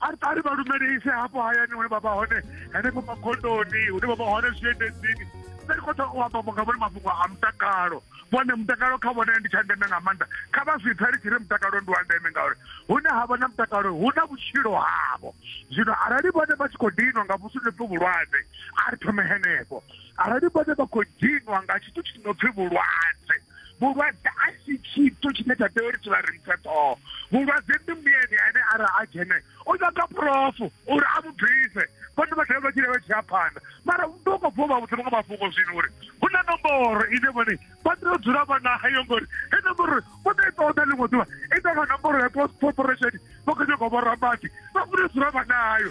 arali vha lumelise hafho hayani hune vha vha hone henefho makhondoni hune vha vha hone zwiendedzini nṋe ndi khou ṱoḓa u amba nga vhone mafhungo a mutakalo vhone mutakalo kha vhone ndi tsha ndeme nga maanḓa kha vha zwi pfhe ri tshi ri mutakalo ndi wa ndeme ngauri hune ha vha na mutakalo hu na vhutshilo havho zwino arali vhone vha tshi khou dinwa nga vhusi nopfi vhulwadze a ri thome henefho arali vhone vha khou dinwa nga tshithu tshi nopfi vhulwadze vhulwadze a si tshithu tshine tsha tea uri tshi vha rinthe ṱhoho vhulwadze ndi mbuyeni ane ara a dzhene u nyaga phurofu uri a mu bvise vhone vha dovha vha tshile vha tshi ya phanḓa mara ndo ko bvo vha vhudza vhaṅwe mafhungo zwino uri hu na nomboro ine vhone vha tea u dzula vha nayo ngori he nomboro vho ḓo i ṱoḓa ḽiṅwe ḓuvha i ḓa vha nomboro ya post corporation vha khou nyanga u vhorabadi vha funa u dzula vha nayo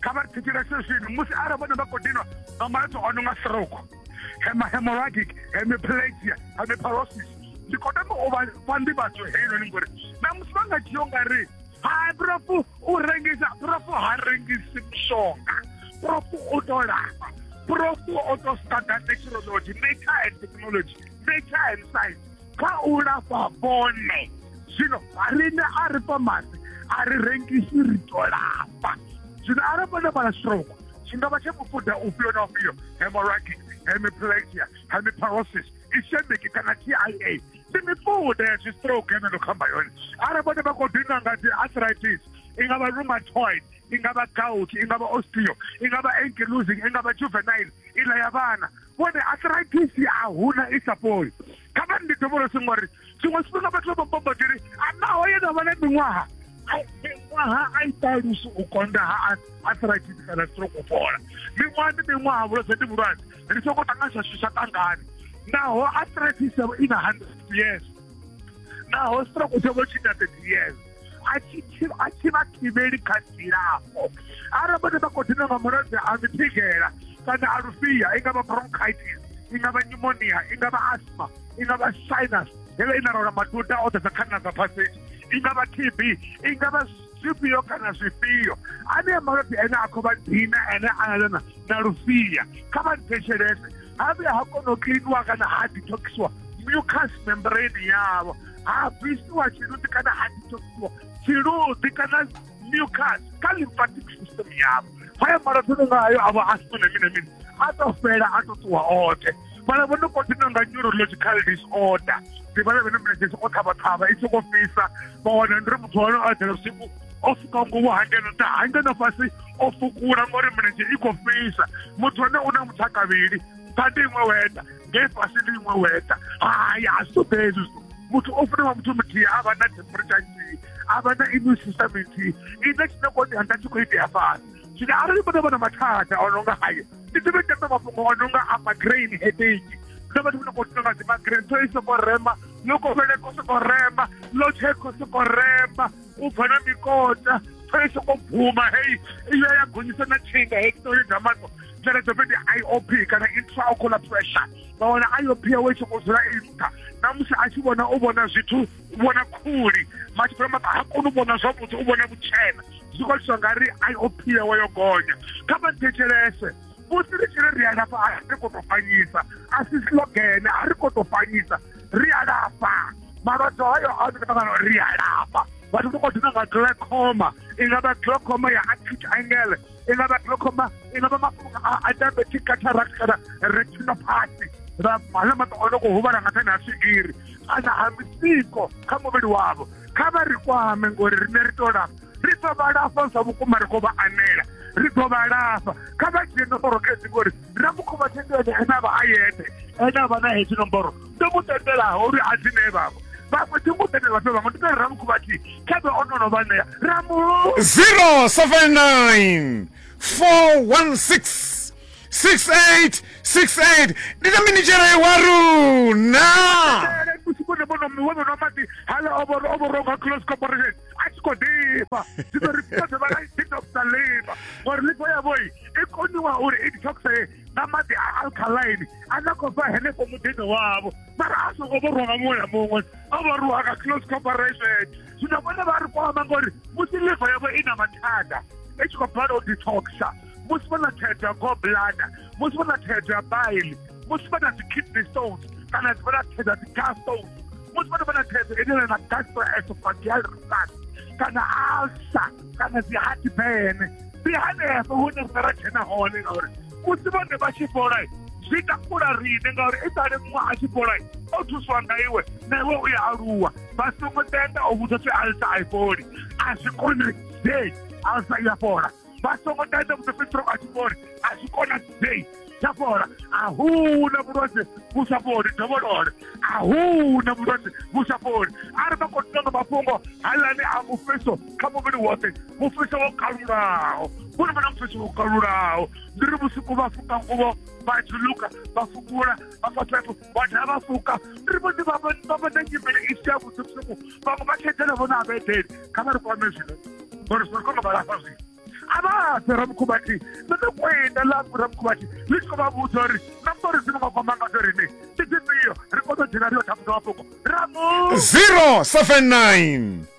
kha vha thetshelese zwino musi arali vhone vha khou dinwa nga malwadze o no nga stroke hemorrhagic hemiplegia hemiparosis ndi khou tama u vha fha nḓivhadzo heinoni ngori na musi vha nga dzhia u nga ri hai profu u rengisa profu ha rengisi mushonga profu u to lafha profu o to studa technology nature and technology nature and science kha u lafha vhone zwino riṋe a ri fha masi a ri rengisi ri to lafha zwino arali vhone vhala stroke tshi nga vha tsha mufuda ufhio na ufhio hemorrhagic hemiplegia hemiparosis ischemic kana t i a ndi mifuda ya zwistroke ene ndo khamba yone arali vhone vha khou dinwa nga dzi arthritis i nga vha rheumatoid i nga vha gout i nga vha osteo i nga vha ankylosing i nga vha juvenile iḽa ya vhana vhone arthritis a huna i sa fholi kha vha ndi dovholosi ngori tshiṅwe tshifhinga vhathu vha bombodiri a naho ye na vha na miṅwaha miṅwaha a i ṱalusi u konda ha arthritis kana stroke u fhola miṅwaha ndi miṅwaha vhulwadze ndi vhulwadze ri soko ṱanganyisa zwithu zwa ṱangani naho arthritis yavho i na hundred years naho stroke tshavho tshi na thirty years a tshi a tshi vha thivheli kha dzilafho arali vhone vha khou dina nga mulwadze a mithigela kana a lufhia i nga vha bronchitis i nga vha pneumonia i nga vha asthma i nga vha sinus heḽo i na rola maduda o ḓadza khanna dza phaseji i nga vha tb i nga vha zwifhio kana zwifhio anea malwadze ene a khou vha dina ene analana na lufhia kha vha nthetshelese ha vhuya ha kona u kiḽiniwa kana ha detoxiwa mucus membrane yavho ha bvisiwa tshiluḓi kana ha detoxiwa tshiluḓi kana mucus kha lymphatic system yavho haya malwadze no nga hayo a vha a sina na mini na mini a to fhela a to ṱuwa oṱhe vhala vho no kotina nga neurological disorder ndi vhala vhene mlenzhesi o ṱhavhaṱhavha i songo fhisa vha wana ndi ri muthu wa hone o eḓela vhusiku o fuka ngomu hangeno nṱha hangeno fhasi o fukula ngori mlenzhe i khou fhisa muthu ane u na muthu a kavhili thanda iṅwe weta ngei fhasi ndi iṅwe weta hai a zwi ṱoḓea hezwi zwithu muthu o funa wa muthu muthihi a vha na temperature nthihi a vha na immune system nthihi ine tshine koni hanga tshi khou itea fhasi zwino arali muno vha na mathada o no nga hayo ndi ḓivhe tembe mafhungo o no nga a magrain headache na vhathu vhone khou tea nga dzi magrain so i sokou rema yo kovhele ko sokou rema lo tshe ko sokou rema u bva na mikota pfela i soko bvuma hei iyo ya gonyisa na thinga hei kitori dza mato dzone dzo fhedzi i o p kana intraocular pressure vha wana i o p yawe i soko dzula i nṱha na musi a tshi vhona u vhona zwithu u vhona khuli matshipela maṱa ha koni u vhona zwavhuḓi u vhona vhutshena zwi khou itiswa nga ri i o p yawe yo gonya kha vha thetshelese musi ri tshi ri ri alafha a ri khou tou fanyisa a si slogene a ri khou tou fanyisa ri alafha malwadze hayo a ri ṱangana ri alafha vhathu ri khou dina nga glaucoma i nga vha glaucoma ya acute angle i nga vha glaucoma i nga vha mafhungo a diabetic cataract kana retinopathy ra hala maṱo o no khou huvhala nga thani ha swigiri kana ha misiko kha muvhili wavho kha vha ri kwame ngori rine ri tou lafha ri ḓo vha lafha zwa vhukuma ri khou vha anela ri ḓo vha lafha kha vha dzhie nomboro khezi ngori na mukhuvha thendelani ene a vha a yeṱhe ene a vha na hedzi nomboro ndo mu tendelaho uri a dzi nee vhaṅwe vhaṅwe thi ngo tendela fhe vhaṅwe ndi tori ra mukhuvha thi kha vhe o no no vha ṋea ra mu 079 416 6868 ndi na minitshela ya wa runa Tele, kusi kone bono mwe bono mati hala oboro oboro ka close corporation a tshi khou ḓifha zwino ri tea dovha ra detoxa liver ngori liver yavho i koniwa uri i detoxe nga maḓi a alkaline a na khou bva henefho muḓini wavho mara a songo vho rwa nga muṅwe na muṅwe o vho rwa nga close corporation zwino vhone vha ri kwama ngori musi liver yavho i na mathanda i tshi khou bala u detoxa musi vha na thaidzo ya goblada musi vha na thaidzo ya baili musi vha na dzi-kidney stones kana vha na thaidzo ya dzi-gas stones musi vhana vha na thaidzo enena na gastroesophageal reflux kana alsa kana dzi-heart bene ndi hanefho hune rine ra dzhena hone ngauri musi vhone vha tshi fhola zwi takula rine ngauri i sale muṅwe a tshi fhola o thuswa nga iwe na iwe u ya aluwa vha songo tenda o vhudza pfi alsa a i fholi a zwi konadzei alsa i ya fhola vha songo ṱaenda mupefesiro a tshi vhori a zwi konadzei tsha fhola a hu na vhulwadze vhu sa fholi dovholole a hu na vhulwadze vhu sa fholi a ri vha khou ṱoḓa mafhungo halani a mufhiso kha muvhili woṱhe mufhiso wo kalulaho vhone vhona mufhiso wo kalulaho ndi ri vhusiku vha fuka nguvo vha dziluka vha fukula vha fa phepho vhathu a vha fuka ri vho ḓi vha vha na nyimele i si ya vhuḓi vhusiku vhaṅwe vha khedzela vho na avhaedele kha vha ri kwame zwino uri zwi kona vha lafha zwino a vha fhe ramukhubathi ndo ndo kwenda ḽa ramukhubathi ḽi tshi khou vha vhudza uri na mbori dzine vha kwama ngadzo rine ndi dzifhio ri kone u dzhena ri yo thafuza mafhungo ramu 079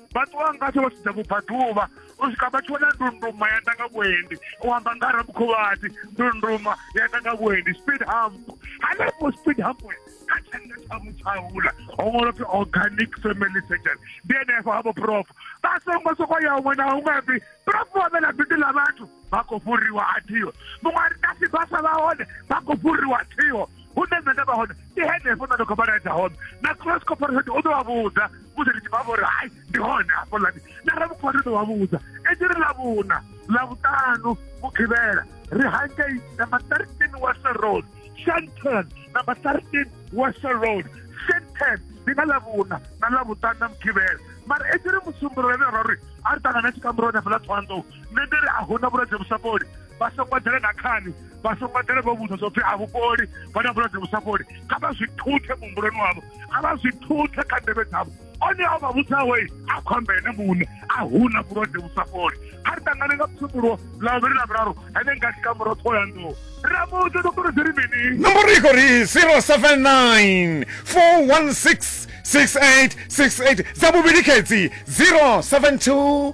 vha ṱuwa ngasho vha sedza vhubvaḓuvha u swika vha tshi wana ndunduma ya ḓa nga vhuendi u amba nga ramukhuvhati ndunduma ya ḓa nga vhuendi speed hump hanefho speed hump kha tshanḓa tsha mutshaula ho ṅwalwa pfi organic family surgeon ndi enefho havho prof vha songo soko ya huṅwe na huṅwe pfi prof wa vhe na bindu ḽa vhathu vha khou fhuriwa a thiho muṅwe a ri kasi vhasa vha hone vha khou fhuriwa a thiho hune nṋe nda vha hone ndi henefho nṋe ndi khou vha laedza hone na cross corporation u ḓo vha vhudza musi ndi tshi vha vhori hai ndi hone hafho lani na ramukhwari u ḓo vha vhudza ende ri lavhuna lavhuṱanu mukhivhela ri hangei number thirteen wasa road shanton number thirteen wasa road shanton ndi nga lavhuna na lavhuṱanu na mukhivhela mara ende ri musumbululele ra uri a ri ṱangana tshikamuroni hafhaḽa thohoyanḓou nṋe ndi ri a huna vhulwadze vhu sa fholi vha songo ḓela na khani vha songo ḓela vho vhudza zwopfi a vhukoli vha na vhulwadze vhu sa fholi kha vha zwi thuthe muhumbuloni wavho a vha zwi thuthe kha ndevhe dzavho one a vha vhudzawe a khombe ene muṋe a huna vhulwadze vhu sa fholi kha ri ṱangane nga psumbulo ḽa vhuvhili na vhuraru ene nga tshikamuro ṱhoho ya nḓuwo ramudze ndo kuri dzi ri mini nomboro i khou ri 079 416 6868 dza vhuvhili khedzi 072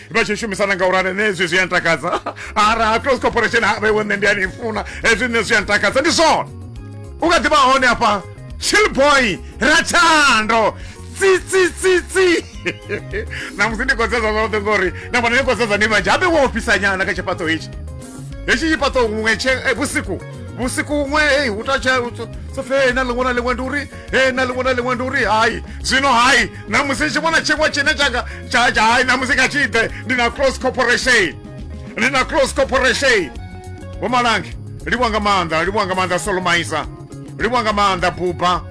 vha tshi shumisana nga urali ne hezwi zwi a ntakadza ara close corporation ha vhaiwe nṋe ndi a ni funa hezwi nṋe zwi a ntakadza ndi zwone u nga ḓivha hone hafha chillboy rathando tsitsitsitsi namusi ndi kodzeza zwoṱhe ngori na vhona ni kodzeza ni vhanzhi habe wo ofhisa nyana kha tshifhaṱo hetshi hetshi tshifhaṱo huṅwe tshe eh, vhusiku vhusiku huṅwe ei hu tatsha sofe na ḽiṅwe na ḽiṅwe ndi uri e na ḽiṅwe na ḽiṅwe ndi uri hai zwino hai na musi ndi tshi vhona tshiṅwe tshine tshanga tsha tsha hai na musi kha tshi ḓe ndi na close corporation ndi na close corporation vho malange livhuwa nga maanḓa livhuwa nga maanḓa solomaisa livhuwa nga maanḓa buba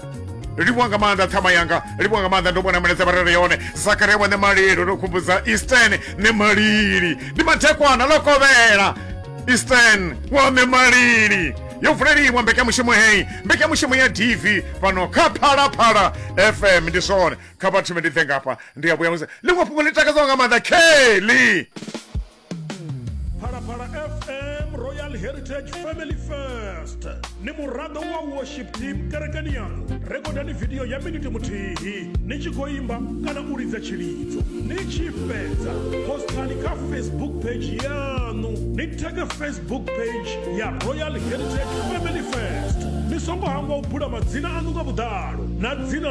livhuwa nga maanḓa ṱhama yanga livhuwa nga maanḓa ndo vhona milaedza vha rere yone zakaria wa ṋemalilo ndo khumbudza eastern ṋemalili ndi mathekwana ḽo kovhela eastern wa ṋemalili yo vuleliwa mbekanyamushumo heyi mbekanyamushumo ya dv fhano kha phalaphala fm ndi zwone kha vhathu ndi ḓe ngafha ndi a vhuya musi ḽiṅwe fhungo ḽi takadzaho nga maanḓa kelly phalaphala fm royal heritage family first ni muraḓo wa worship team kerekeni yaṋu rekodani vidio ya miniti muthihi ni tshi khou imba kana u lidza tshilidzo ni tshi fhedza postani kha facebook page yaṋu ni theke facebook book page ya royal heritage family first ni songo hangwa u bula madzina aṋu nga vhuḓalo na dzina